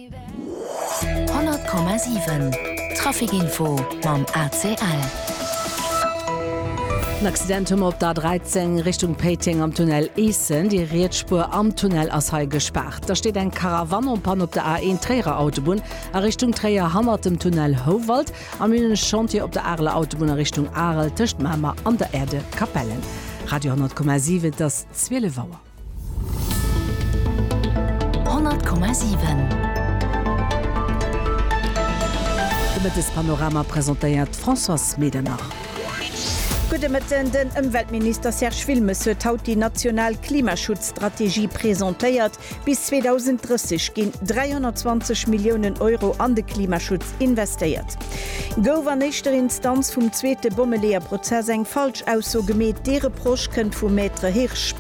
100,7 Trafic-Info mam ACL. En Accident hu mer op der A13 Richtung Péiteng am Tunnel Eessen. Déi riets Spuer am Tunnel ass hei gespaart. Da steet eng Caravane en panne op der A1 Tréierer Autobunn a Richtung Tréier hannert dem Tunnel Houwald. Am Minne Chantier op der Areler Autobunn a Richtung Arel tëscht Mamer an der Aire de Capellen. Radio 100,7 Et ass 12 Auer. 100,7. De Mëttespanorama presentéiert d'Françoise Medernach. Gudde Mëtten, Den Ëmweltminister Serge Wilmes huet haut déi national Klimaschutzstrategie presentéiert. Bis 2030 ginn 320 Milliounen Euro an de Klimaschutz investéiert. Gouf an éischter Instanz vum zweete Bommeleeër-Prozess eng falsch Ausso gemeet? Dee Reproche kënnt vum Maître Hirsch.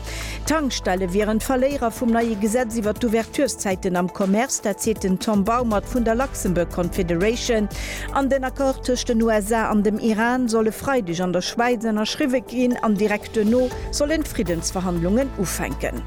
D'Tankstelle wieren d'Verléierer vum neie Gesetz iwwer d'Ouverturszäiten am Commerce, dat seet den Tom Baumert vun der Luxembourg Confederation. An den Accord tëscht den USA an dem Iran soll e Freideg an der Schwäiz ënnerschriwwe ginn an direkt duerno sollen d'Friddensverhandlungen ufänken.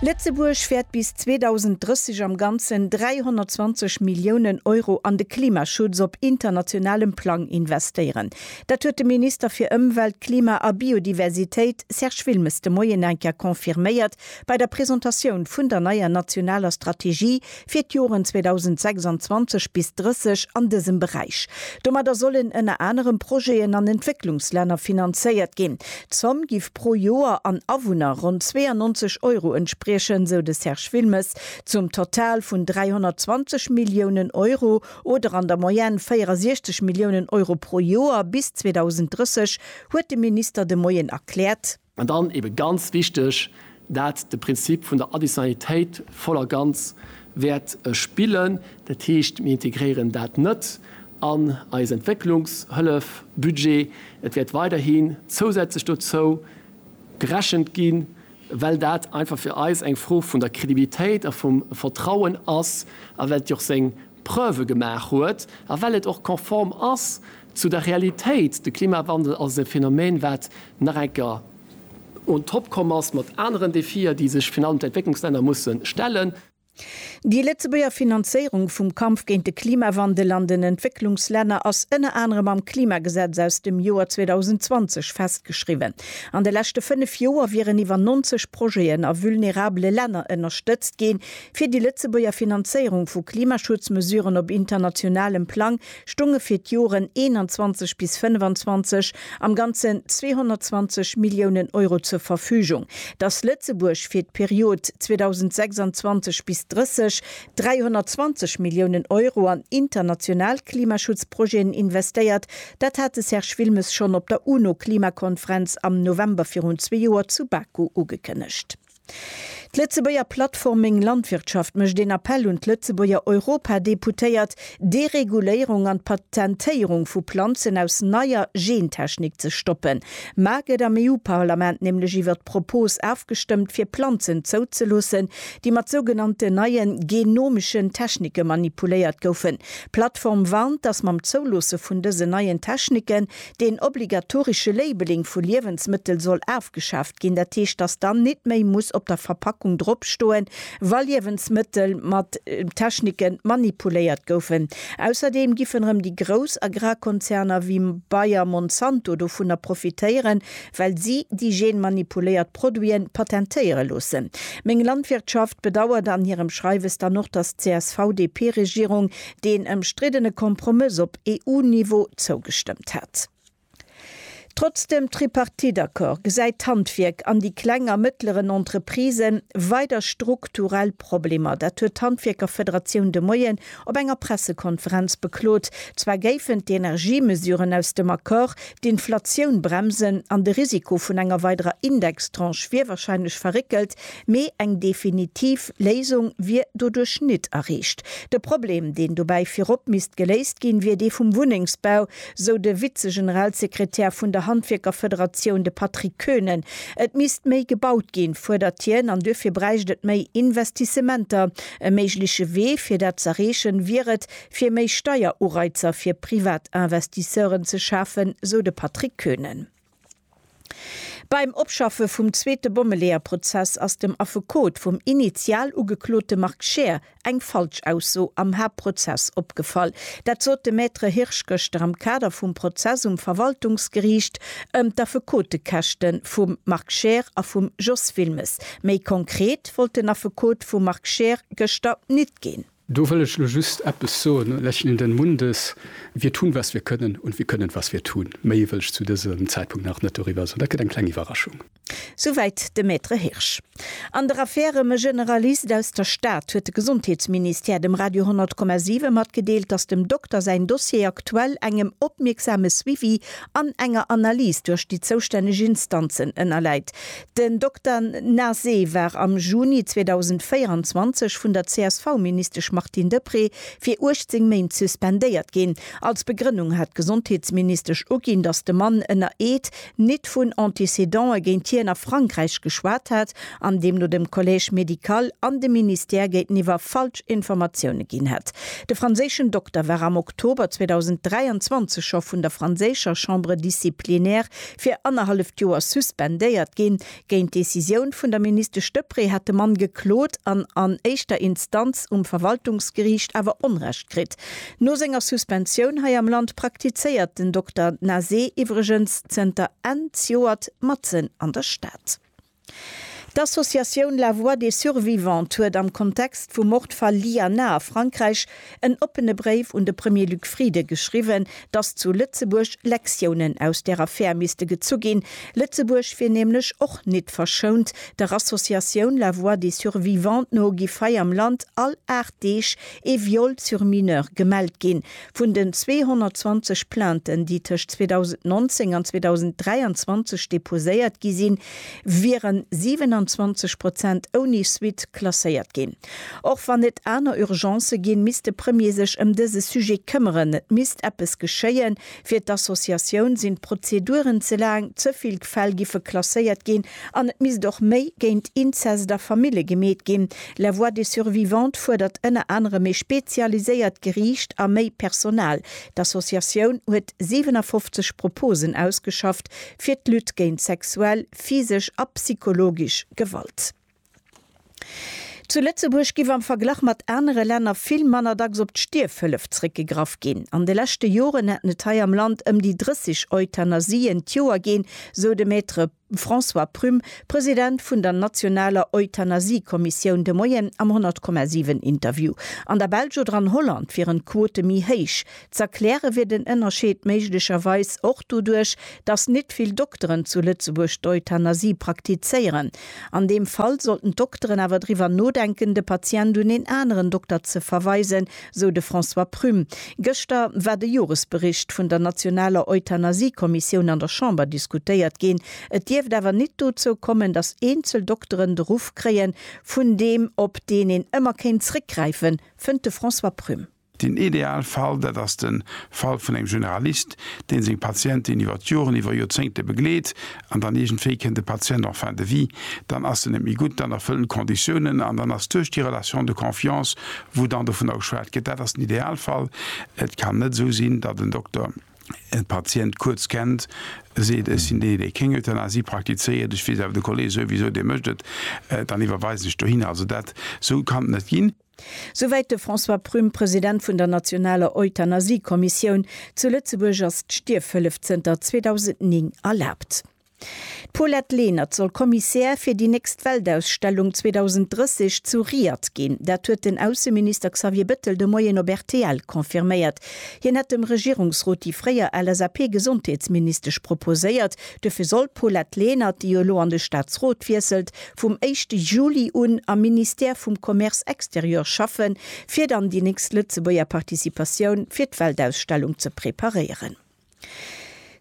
Lëtzebuerg wäert bis. 2030 am Ganzen 320 Milliounen Euro an de Klimaschutz op internationalem Plang investéieren. Dat huet de Minister fir Ëmwelt, Klima a Biodiversitéit, Serge Wilmes, de Moien eng Kéier confirméiert bei der Presentatioun vun der neier nationaler Strategie fir d'Joren 2026 bis 30 an dësem Beräich. Domadder sollen ënner anerem Projeten an Entwécklungslänner finanzéiert ginn. D'Zomm giff. pro Joer an Awunner ronn 92 Euro entspriechen, sou de Serge Wilmes, zum Total vun 320 Milliounen Euro oder an der Moyenne 64 Milliounen Euro pro Joer bis 2030, huet de Minister de Moien erkläert. An dann eebe ganz wichteg, dat de Prinzip vun der Additionnalitéit voll a ganz wäert spillen. Dat heescht, mir integréieren dat net, an eis Entwécklungshëllefbudget. Et wäert weiderhi zousätzlech dozou gerechent ginn, well dat einfach fir eis eng Fro vun der Credibilitéit a vum Vertrauen ass a well et jo och seng Preuve gemaach huet a well et och konform ass zu der Realitéit. De Klimawandel ass e Phänomen, wat nach eng Kéier on top komm ass mat aneren Défier, déi sech virun allem d'Entwécklungslänner musse stellen. Déi Lëtzebuerger Finanzéierung vum Kampf géint de Klimawandel an den Entwécklungslänner ass ënner anerem am Klimagesetz aus dem Joer 2020 festgeschriwwen. An de leschte fënnef Joer wieren iwwer 90 Projeten a vulnerabele Länner ënnerstëtzt ginn, fir déi Lëtzebuerger Finanzéierung vu Klimaschutzmesuren op internationalem Plang stounge fir d'Joren 21 bis 25 am Ganzen 220 Milliounen Euro zur Verfügung. Dass Lëtzebuerg fir d'Period 2026 bis 30 320 Milliounen Euro an international Klimaschutzprojeten investéiert, dat hat de Serge Wilmes schonn op der UNO-Klimakonferenz am November virun zwee Joer zu Baku ugekënnegt. D'Lëtzebuerger Plattform Meng Landwirtschaft mécht een Appell un d'Lëtzebuerger Europadeputéiert, d'Dereguléierung an d'Patentéierung vu Planzen aus neier Gentechnik ze stoppen. Mar gëtt am EU-Parlament nämlech iwwer d'Propos afgestëmmt fir Planzen zouzeloossen, déi mat sougenannten neie genomischen Technike manipuléiert goufen. D'Plattform warnt, datt mam Zouloosse vun dësen neien Techniken deen obligatorische Labeling vu Liewensmëttel soll afgeschaaft ginn, dat heescht, dass dann nit méi muss op der Verpackung drop stoen, wa Liewensmëttel mat Technike manipuléiert goufen. Ausserdeem giffen erëm déi grouss Agrarkonzerner wéi Bayer, Monsanto dovunner profitéieren, well si déi genmanipuléiert Produite patentéiere loossen. Meng Landwirtschaft bedauert an hirem Schreiwes dann och, dass d'CSV-DP-Regierung deen ëmstriddene Kompromëss op. EU-Niveau zougestëmmt hat. Trotz dem Tripartite-Accord gesäit d'Handwierk an déi kleng a mëttleren Entreprisë weider strukturell Problemer. Dat huet d'Handwierkerfederatioun de Moien op enger Pressekonferenz beklot. Zwar géifen d'Energiemesuren aus dem Accord d'Inflatioun bremsen an de Risiko vun enger weiderer Indextranche wier warscheinlech verréckelt, Mee eng definitiv Léisung wier doduerch nit erreecht. De Problem, deen dobäi virop misst geléist ginn, wier dee vum Wunnengsbau, sou de Vize-Generalsekretär vun der Handwierkerfederatioun, de Patrick Koenen. Et misst méi gebaut ginn, fuerdert hien, an duerfir bräicht et méi Investissementer. E méigleche Wee, fir dat z'erreechen, wier et, fir méi Steierureizer fir Privatinvestisseuren ze schafen, sou de Patrick Koenen. Beim Opschaffe vum zweete Bommeleeër-Prozess ass dem Affekot vum initial Ugeklote Marc Scheer eng Falschausso am Haaptprozess opgefall. Dat sot de Maître Hirsch gëschter am Kader vum Prozess um Verwaltungsgeriicht ëm d'Affekotekäschte vum Marc Scheer a vum Jos Wilmes. Méi konkret wollt den Affekot vum Marc Scheer gëschter nit ginn. Do wëll ech elo just eppes soen, Lächeln in den Mundes, wir tun, was wir können und wir können, was wir tun. Méi wëll ech zu dësem Zäitpunkt nach net doriwwer soen. Dat gëtt eng kleng Iwwerraschung. Souwäit de Maître Hirsch. An der Affär ëm e Generalist aus der Stad huet de Gesondheetsministère dem Radio 10,7 matgedeelt, datt dem Dokter säin Dossier aktuell engem opmierksame Suivi an enger Analys duerch déi zoustänneg Instanzen ënnerläit. Den Dokter Nase war am Juni 2024 vun der CSV-Ministesch Martine Deprez fir 18 Méint suspendéiert ginn. Als Begrënnung hat d'Gesondheetsministesch uginn, datt de Mann ënner Eed nit vun Antécédantë géint hien a Frankräich geschwat hätt an deemno dem Collège médical an dem Ministère géinteniwwer falsch Informatioune ginn hätt. De franséischen Dokter war am Oktober 2023 scho vun der franséischer Chambre disciplinaire Fir annerhalleft Joer suspendéiert ginn. Géint d'Decisioun vun der Ministesch Deprez hat de Mann geklot an an éischter Instanz um Verwaltungsgeriicht awer Onrecht kritt. No senger Suspensioun hei am Land praktizéiert den Dokter Nazeh iwwregens zënter Enn Zjoert matzen an der Stad. D'Associatioun La Voix des Survivantes huet am Kontext vum Mordfall Lyana a Frankräich en oppene Bréif un de Premier Luc Frieden geschriwwen, dass zu Lëtzebuerg Lektiounen aus der Affär misste gezu ginn. Lëtzebuerg wier nämlech och nit verschount. Der Associatioun La Voix des Survivantes no giff hei am Land all 8 Deeg ee Viol sur mineur gemellt ginn. Vun den 220 Plainten, déi tëscht 2019 an 2023 deposéiert gi sinn, wieren 27 Prozent ouni Suite klasséiert ginn. Och wann et aner Urgencë ginn, misst de Premier sech ëm dëse Sujet këmmeren. Et misst eppes geschéien. Fir d'Associatioun sinn d'Prozeduren ze laang, ze vill Fäll giffe klasséiert ginn An et misst och méi géint Inzest a Famille gemeet ginn. La Voix des Survivantes fuerdert ënner anerem ee spezialiséiert Geriicht a méi Personal. D'Associatioun huet 57 Proposen ausgeschafft fir d'Lutte géint sexuell, physesch a psychologisch Gewalt. Zu Lëtzebuerg giff am Verglach mat anere Länner vill manner dacks op d'Stierfhëllef zréckgegraff ginn. An de leschte Joren hätten et hei am Land ëm déi 30 Euthanasien d'Joer ginn, sou de Maître François Prüm, President vun der nationaler Euthanasie-Kommissioun de Moien am 100,7 Interview. An der Belsch oder an Holland wieren d'Quote méi héich. Z'erkläre wier den Ënnerscheed méiglecherweis och doduerch, datt nit vill Dokteren zu Lëtzebuerg d'Euthanasie praktizéieren. An deem Fall sollten d'Dokteren awer driwwer nodenken, de Patient un een aneren Dokter ze verweisen, sou de François Prüm. Gëschter war de Joresbericht vun der nationaler Euthanasie-Kommissioun an der Chamber diskutéiert ginn. Et dierft awer nit dozou kommen, datt eenzel Dokteren de Ruff kréien, vun deem op deen een ëmmer kéint zréckgräifen, fënnt de François Prüm. Den Idealfall, dat ass de Fall vun engem Generalist, deen seng Patienten iwwer d'Joren, iwwer Joerzéngte begleet an dann iergendwéi kënnt de Patient en fin de vie, dann ass en net méi gutt, dann erfëllt en d'Conditiounen an dann ass duerch déi Relation de confiance, wou dann dovunner geschwat gëtt, dat ass den Idealfall. Et kann net esou sinn, datt en Dokter e Patient kuerz kennt, seet, ech sinn dee, dee kéng Euthanasie praktizéiert, ech weess awer, de Kollee souwisou, dee mécht et, dann iwwerweisen ech dohinner. Also dat, esou kann et net ginn. Souwäit de François Prüm, President vun der nationaler Euthanasie-Kommissioun. Zu Lëtzebuerg ass d'Stierfhëllef zënter 2009 erlaabt. D'Paulette Lenert soll Commissaire fir déi nächst Weltausstellung 2030 zu Riyadh ginn. Dat huet den Ausseminister Xavier Bettel de Moien op rtl confirméiert. Hien hätt dem Regierungsrot déi fréier LSAP-Gesondheetsministesch proposéiert. Dofir soll d'Paulette Lenert, déi jo elo an de Staatsrot wiesselt, vum éischte Juli un am Ministère vum Commerce extérieur schaffen, fir dann déi nächst Lëtzebuerger Participatioun fir d'Weltausstellung ze preparéieren.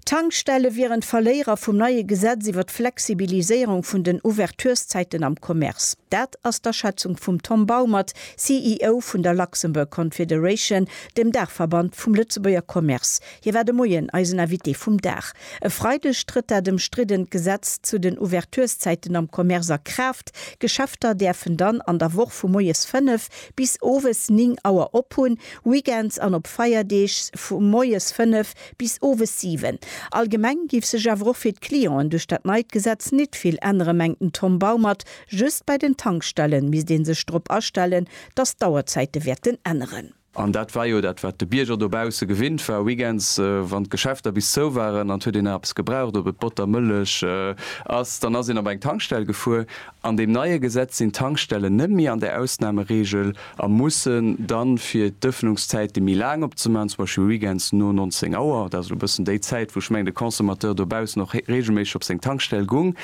D'Tankstelle wieren d'Verléierer vum neie Gesetz iwwer d'Flexibiliséierung vun den Ouverturszäiten am Commerce. Dat ass d'Aschätzung vum Tom Baumert, CEO vun der Luxembourg Confederation, dem Daachverband vum Lëtzebuerger Commerce. Hie war de Moien eisen Invité vum Dag. E Freideg trëtt dat ëmstriddent Gesetz zu den Ouvertureszäiten am Commerce a Kraaft. Geschäfter däerfen dann an der Woch vu moies 5 bis owes 9 Auer op hunn, Weekends an op Feierdeeg vu moies 5 bis owes 7. Allgemeng géif sech awer och fir d'Clienten duerch dat neit Gesetz nit vill änneren, mengt den Tom Baumert. Just bei den Tankstellen misst ee sech drop astellen, datt d'Auerzäite wäerten änneren. An dat war jo dat, wat de Bierger dobausse gewinnt war, weekends, wann d'Geschäfter bis zou waren an et huet een nach eppes gebraucht, ob et Botter, Mëllech ass, dann ass een op eng Tankstell gefuer. An deem neie Gesetz sinn d'Tankstellen net méi an där Ausnameregel a mussen dann, fir d'Ëffnungszäite méi laang opzemaachen, zum Beispill weekends no 19 Auer, dat ass elo e bëssen déi Zäit, wou ech mengen, de Consommateur dobaussen och reegelméisseg op seng Tankstell gung,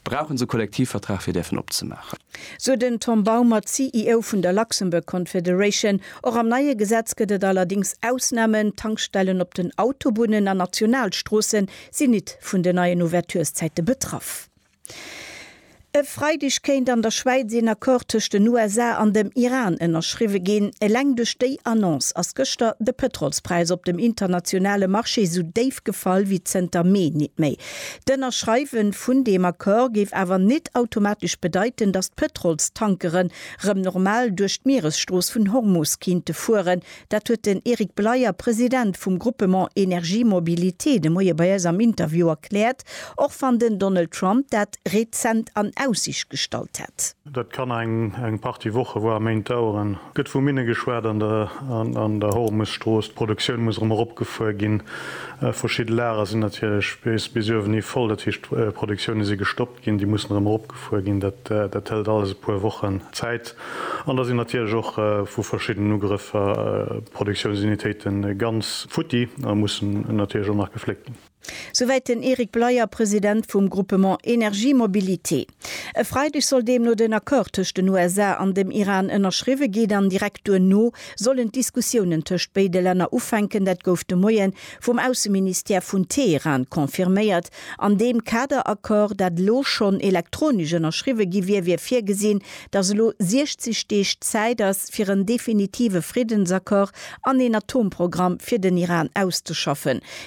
Brauchen se Kollektivvertrag fir däerfen opzemaachen? Sou den Tom Baumer, CEO vun der Luxembourg Confederation. Och am neie Gesetz gëtt et allerdings Ausnamen, Tankstellen op den Autobunnen an Nationalstroosse sinn nit vun den neien Ouverturszäite betraff. E Freideg kéint an der Schwäiz een Accord tëscht den USA an dem Iran ënnerschriwwe ginn. Eleng duerch déi Annonce ass gëschter de Pëtrolspräis op dem internationale Marché sou déif gefall wéi zënter Mee nit méi. D'Ënnerschreiwen vun deem Accord géif awer nit automatesch bedeiten, datt d'Pëtrolstankeren rëm normal duerch d'Mieresstrooss vun Hormus kinnte fueren. Dat huet den Eric Bleyer, President vum Groupement Energie Mobilité, de Moie bei eis am Interview erkläert, och wann den Donald Trump dat rezent an Aussicht gestallt hätt. Dat kann eng Partie Woche, voire Méint daueren. Et gëtt vu Minne geschwat an der Hormusstrooss. D'Produktioun muss erëm eropgefuer ginn. Verschidde Lager sinn natierlech bis uewenhi voll, dat heescht d'Produktioune si gestoppt ginn. Déi mussen erëm eropgefuer ginn. Dat hëlt alles e puer Wochen Zäit. An da sinn natierlech och vu verschiddenen Ugrëffer Produktiounsunitéite ganz futti a mussen natierlech och nach gefléckt ginn. Souwäit den Eric Bleyer, President vum Groupement Energie Mobilité. E Freideg soll deemno den Accord tëscht den USA an dem Iran ënnerschriwwe ginn an direkt duerno sollen d'Diskussiounen tëscht béide Länner ufänken. Dat gouf de Moie vum Ausseministère vun Teheran confirméiert. An deem Kader-Accord, dat elo schonn elektronesch ënnerschriwwe gi wier, wier virgesinn, datt elo 60 Deeg Zäit ass, fir en definitive Friddensaccord an een Atomprogramm fir den Iran auszeschaffen.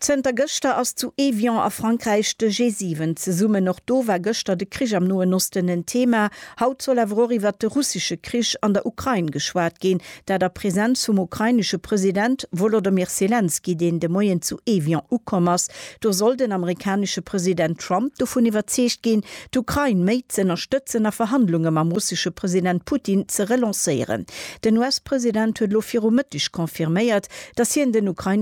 Zënter gëschter ass zu Évian a Frankräich de G7 zesummen. Och do war gëschter de Krich am Noen Osten en Thema. Haut soll awer och iwwert de russesche Krich an der Ukrain geschwat ginn, dat a Presenz vum ukrainesche President Wolodymyr Selenskyj, deen de Moien zu Évian ukomm ass. Do soll den amerikanesche President Trump dovun iwwerzeegt ginn, d'Ukrain méi z'ënnerstëtzen a Verhandlunge mam russesche President Putin ze relancéieren. Den US-President huet elo viru Mëtteg confirméiert, datt hien den ukrainesche